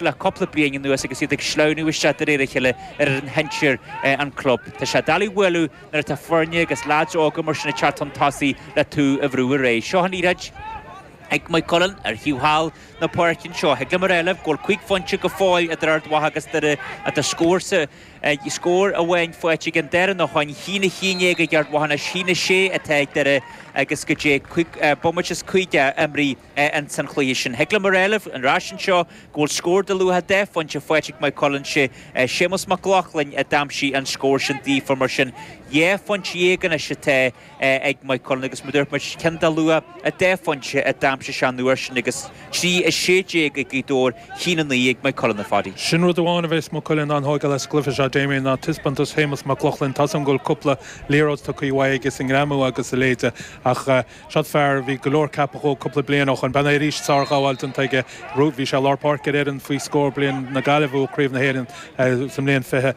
le cúpla bliain anuas agus iad ag sleamhnú isteach de réir a chéile ar fhoireann shinsir an chlub. Tá sé doiligh a bhualadh nuair atá foirne agus leaids óga mar sin ag teacht chun tosaigh le tú a bhrú ar aghaidh. Seo an liathróid ag Maigh Cuilinn, ar thaobh thall na páirce anseo, thig liom a rá libh go bhfuil cúig phointe go fóill idir Ard Mhacha agus Doire ach tá scór sa scór amháin faighte ag an Doire nó tháinig chionn a chionn déag ag Ard Mhacha anois. Chionn a sé atá ag Doire agus goidé bomaite is caoga imrithe. Ins an chluiche sin, thig liom a rá libh, an ráisin seo, go bhfuil scór de luach dhá phointe faighte ag Maigh Cuilinn. Sé Séamus Mac Lochlainn a d'aimsigh an scór sin daofa, mar sin, dhá phointe dhéag anois atá ag Maigh Cuilinn, agus mar dúirt muid, ceann de luach dhá phointe a d'aimsigh sé an uair sin, agus trí a sé déag ag Gaoth Dobhair, chionn a naoi ag Maigh Cuilinn, a Phadaí. Sin rud amháin a bheas Maigh Cuilinn an-thógtha leis sa gcluiche seo, Damien, ná taispeántas Shéamus Mac Lochlainn. Tá 'sam go bhfuil cúpla liathróid tugtha uaidh aige sa ngreamú agus a leithéide, ach, Seod fear, bhí go leor ceaptha dhó cúpla bliain ó shoin. B'in é arís sárghabháil déanta aige. Bhí sé i lár páirce ar fhoireann faoi scór bliain na Gaillimhe a bhuaigh Craobh na hÉireann sa mbliain fiche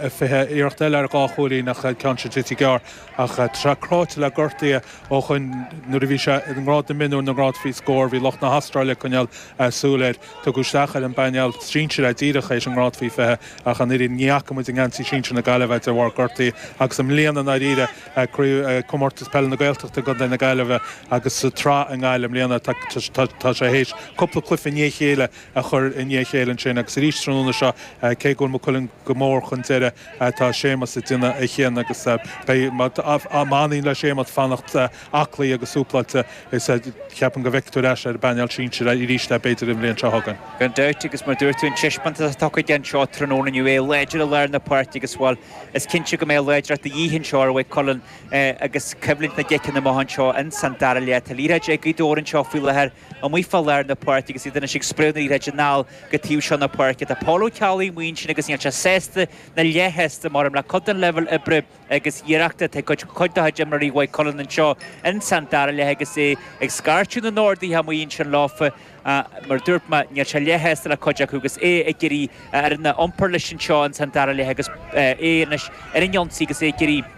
fiche. Iarracht eile ar dhá chúilín ach an ceann sin tite gearr. Ach tá sé cráite le gortuithe ó shoin. Nuair a bhí sé i ngrád na mionúr, na ngrád faoi scór, bhí lucht na hAstráile ag coinneáil súil air. Tugadh isteach ar an bpainéal sinsir é díreach théis an ngrád faoi fiche ach an oiread. Ní fhaca muid i ngeansaí sinsir na Gaillimhe é de bharr gortuithe agus i mbliana i ndáiríre, Eagraíodh Comórtas Peile na Gaeltachta i gContae na Gaillimhe agus sa tSraith i nGaillimh i mbliana. Tá sé théis cúpla cluiche i ndiaidh a chéile a chur i ndiaidh a chéile ansin agus arís tráthnóna seo. Cé go bhfuil Maigh Cuilinn go mór chun deiridh, tá Séamus ag déanamh a chion agus beidh, má éiríonn le Séamus fanacht aclaí agus súpláilte is ceapaim go bhfeicfidh tú ar ais ar an bpainéal sinsir arís é, b'fhéidir, an bhliain seo chugainn. Gan dabht, agus mar dúirt tú, an teispeántas atá tugtha anseo tráthnóna inniu, é láidir i lár na páirce agus, bhuel, Is cinnte go mbeidh láidreacht de dhíth anseo, ar Mhaigh Cuilinn, agus coimhlint na gciceanna amuigh anseo ins an dara leath. Tá liathróid ag Gaoth Dobhair anseo faoi láthair amuigh fá lár na páirce agus iad anois ag spréadh na liathróide anall go taobh seo na páirce. Tá Pól Ó Ceallaigh amuigh ansin agus níl sé sásta ná leathshásta, measaim, le cuid den leibhéal oibre agus iarrachta atá ag cuid dá chuid imreoirí Mhaigh Cuilinn anseo ins an dara leath agus é ag scairteadh na n-orduithe amuigh ansin leofa. a. Mar a dúirt mé, níl sé leathshásta le cuid acu agus é ag iarraidh a fhoireann a iompar leis anseo ins an dara leath agus é anois ar an ionsaí agus é ag iarraidh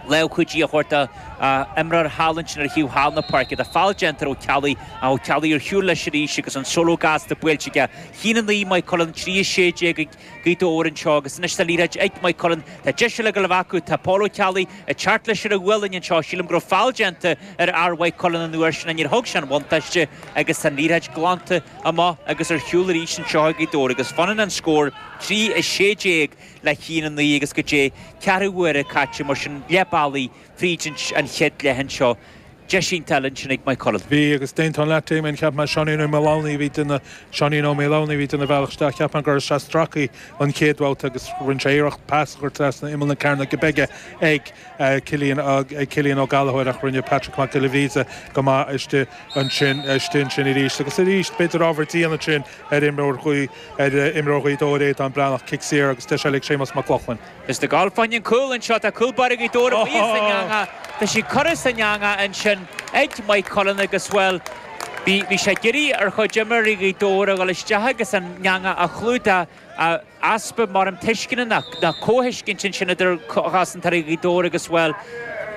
lámh chuidithe a thabhairt dá imreoir thall ansin ar thaobh thall na páirce. Tá feall déanta ar Ó Ceallaigh ach Ó Ceallaigh ar shiúl leis arís agus an solo gasta buailte aige. Chionn 9 Maigh Cuilinn 3 16 ag Gaoth Dobhair anseo agus anois tá an liathróid ag Maigh Cuilinn tá deis eile ag gabháil a bheith acu. Tá Pól Ó Ceallaigh ag teacht leis ar a ghualainn anseo. Sílim go raibh feall déanta ar fhear Mhaigh Cuilinn an uair sin ach níor thug sé an buntáiste agus tá an liathróid glanta amach agus ar shiúl arís anseo ag Gaoth Dobhair agus fanann an scór 3:16 le chionn a naoi agus goidé ceathrú uaire caite. Mar sin le Bally. Bhí sa chéad leath anseo deis iontach ansin ag Maigh Cuilinn. Bhí agus déantán leat Dé mé an cheap mé Seáinín Ó Maoldomhnaigh a bhí ag déanamh, Seáinín Ó Maoldomhnaigh a bhí ag déanamh a bhealach isteach cheap mé go raibh sé stracaí an chéad bhabhta agus rinne sé iarracht pas a chur trasna imeall na cearnóige bige ag Cillian ag Cillian Ó Gallachóir ach rinne Patrick Mac Giolla Bhríde go maith istigh ansin istigh ansin arís agus arís b'fhéidir ábhar dian ansin ar imreoir Ghaoth ar imreoir Ghaoth Dobhair Aodán Breathnach cic saor agus deis eile ag Séamus Mac Lochlainn. Is ag dul fá choinne cúl anseo, tá cúl báire Gaoth Dobhair amuigh as an eanga, tá sí curtha san eanga ansin ag Maigh Cuilinn agus, bhuel, bhí, bhí sé ag iarraidh ar chuid imreoirí Ghaoth Dobhair a dhul isteach agus an eanga a chlúdach, easpa, mar an tuisceana nó comhthuiscint ansin idir chosantóirí Ghaoth Dobhair agus, bhuel,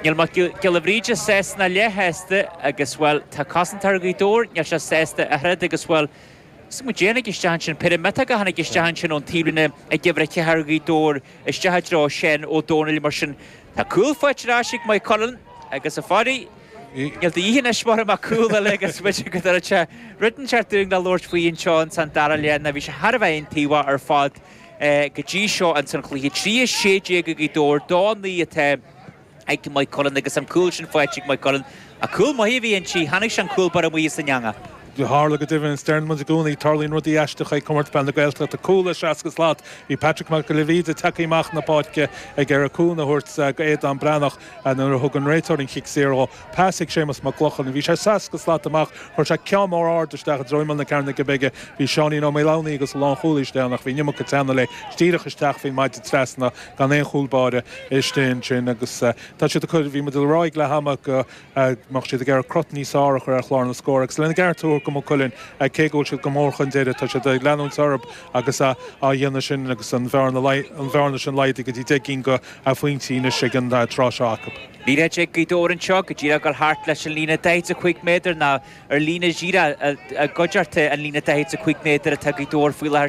níl Mac Giolla Bhríde sásta ná leath shásta agus, bhuel, tá cosantóir Ghaoth Dobhair, níl sé sásta ach oiread agus, bhuel, Is caidé a tháinig isteach ansin, péire miotóga a tháinig isteach ansin ón taobhlíne ag uimhir a ceathair, Gaoth Dobhair, isteach i dtreo Sheán Ó Domhnaill mar sin. Tá cúl faighte ar ais ag Maigh Cuilinn agus, a Pháidí, níl de dhíth anois orainn ach cúl eile agus go dtabharfadh sé rud inteacht dúinn le labhairt faoi anseo in san dara leath nó bhí sé thar a bheith aontaobhach ar fad go dtí seo in san chluiche. Trí a sé déag ag Gaoth Dobhair, dó a naoi atá. ag Maigh Cuilinn agus an cúl sin faighte ag Maigh Cuilinn ach cúl maith a bhí inti, chonaic sé an cúl báire amuigh as an eanga. Tharla go deimhin, is deireann muid i gcónaí, tarlaíonn rudaí aisteacha ag Comórtas Peile na Gaeltachta. Cúl ó 60 slat, bhí Patrick Mac Giolla Bhríde tagtha amach na páirce ag iarraidh cúnamh a thabhairt do Aodán Breathnach nuair a thug an réiteoir an cic saor dhó. Pas ag Séamus Mac Lochlainn, bhí sé 60 slat amach, chuir sé ceann mór ard isteach i dtreo imeall na cearnóige bige. Bhí Seáinín Ó Maoldomhnaigh agus an lánchúlaí istigh ann ach bhí an iomarca teannadh léi, is díreach isteach faoin maide trasna. gan aon chúl báire istigh ansin agus tá siad ag cur, bhí muid ag rá ag leath ama go mbeadh siad ag iarraidh crot níos fearr a chur ar chlár na scór agus lena gceart a thabhairt do Mhaigh Cuilinn cé go bhfuil siad go mór chun deiridh, tá siad ag leanúint orthu agus á dhéanamh sin agus an bhearna sin laghdaithe go dtí deich gcinn de phointí anois ag an tráth seo acu. Míle a deich Gaoth Dobhair anseo go díreach gur thart leis an líne daichead is a cúig méadar nó ar líne dhíreach i gcoigeartuithe an líne daichead is a cúig méadar atá Gaoth Dobhair faoi láthair.